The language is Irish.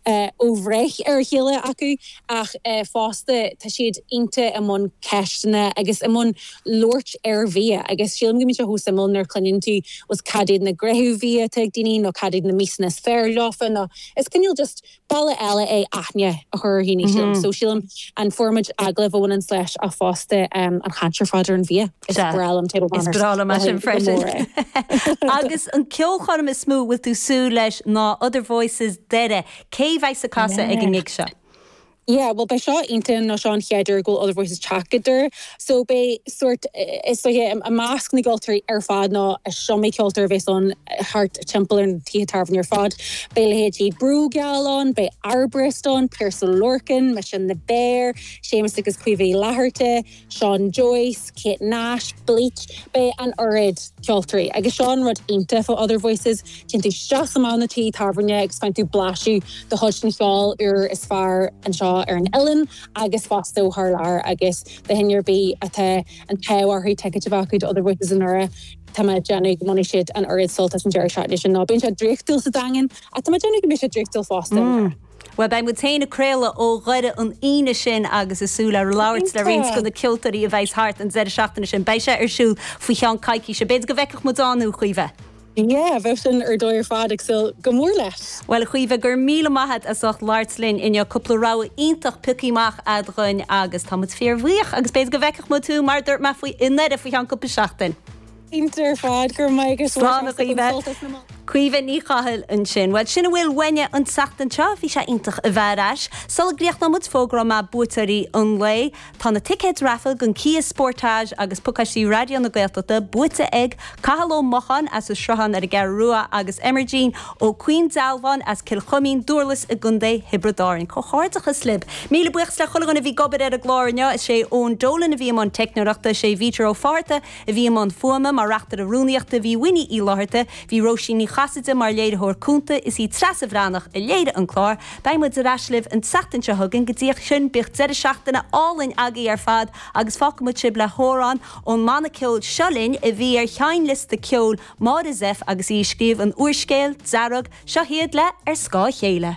ó bhreith ar a chéile acu ach fosta tá siad iontach i mbun ceisteanna agus i mbun labhairt ar bhia agus sílim go mbíonn sé chomh suimiúil nuair a chluineann tú fhuil cad iad na gréithe bia atá ag daoine nó cad iad na miasanna is fearr leofa nó is cineál just bealach eile é aithne a chur ar dhaoine sílim so sílim an formáid agallaimh a bhaineann leis ach fosta an chaint ar fad ar an bhia. Is breá liom Table Manners. Is breá liom é sin freisin. Agus an ceolchoirm is mó a bhfuil tú ag súil leis ná Other Voices, Doire. Cé a bheas ag casadh ag an gig seo? Yeah, bhuel beidh seo iontach nó seo an chéad uair go bhfuil Other Voices ag teacht go Doire, so beidh sórt, is dóiche, i measc na gceoltóirí ar fad nó is iomaí ceoltóir a bheas ann thart timpeall ar na tithe tábhairne ar fad. Beidh leithéidí Brògeal ann, beidh Arborist ann, Piaras Ó Lorcáin, mise, The Bear, Séamus agus Caoimhe Uí Fhlatharta, Seán Joyce, Kate Nash, Bleach, beidh an oiread ceoltóirí agus seo an rud iontach fá Other Voices, téann tú isteach sa mbeár nó tí tábhairne agus faigheann tú blaiseadh de chuid den cheol úr is fearr anseo ar an oileán agus fosta ó thar lear agus do dhuine ar bith atá an t-ádh orthu ticéid a bheith acu do Other Voices i nDoire, tá mé ag déanamh go mbainfidh siad an oiread sult as an deireadh seachtaine sin nó bíonn sé draíochtúil sa Daingean ach tá mé ag déanamh go mbeidh sé draíochtúil fosta i nDoire. Bhuel, beidh muid féin ag craoladh ó Dhoire an Aoine sin agus ag súil le labhairt le roinnt de na ceoltóirí a bheidh thart an deireadh seachtaine sin. Beidh sé ar siúl faoi cheann coicíse. B'fhéidir go bhfeicfeadh muid ann thú, a Chaoimhe? Yeah, bheadh sin ar dóigh ar fad, ag súil go mór leis! Bhuel, a Chaoimhe, go raibh míle maith a't as ucht labhairt linn inniu. Cúpla rogha iontach pioctha amach a'd dhúinn agus tá muid fíor bhuíoch agus b'fhéidir go bhfeicfeadh muid thú, mar a dúirt mé, faoi i nDoire faoi cheann cúpla seachtain. Cinnte ar fad. Go raibh maith agat. Slán a Chaoimhe. Caoimhe Ní Chathail ansin. Bhuel, sin a bhfuil uainne an tseachtain seo. Bhí sé iontach a bheith ar ais. Sula gcríochnóidh muid, fógróidh mé buaiteoirí an lae. Tá na ticéid raifil don Kia Sportage agus pacáistí Raidió na Gaeltachta buaite ag Cathal Ó Mocháin as an Sruthán ar an gCeathrú Rua agus Aimhirgin Ó Caoindealbháin as Cill Chuimín, Dúrlas i gContae Thiobraid Árainn. Comhghairdeachas libh. Míle buíochas le chuile dhuine a bhí ag obair ar an gclár inniu. Is é Eoin Dolan a bhí i mbun teicneoireachta. Is é Peter Ó Fátharta a bhí i mbun fuaime, mar Reachtaire Rúnaíochta bhí Winnie Uí Fhlátharta, bhí Róisín Ní Chasaide mar léiritheoir cúnta, is í Treasa Bhreathnach a léirigh an clár. Beidh muid ar ais libh an tseachtain seo chugainn, go dtí sin bíodh deireadh seachtaine álainn agaibh ar fad agus fágfaidh muid sibh le hamhrán ón mbanna ceoil Seo Linn, a bhí ar sheinnliosta ceoil Máire Zepf agus í ag scríobh an úrscéil, Dearg, seo iad le Ar Scáth a Chéile.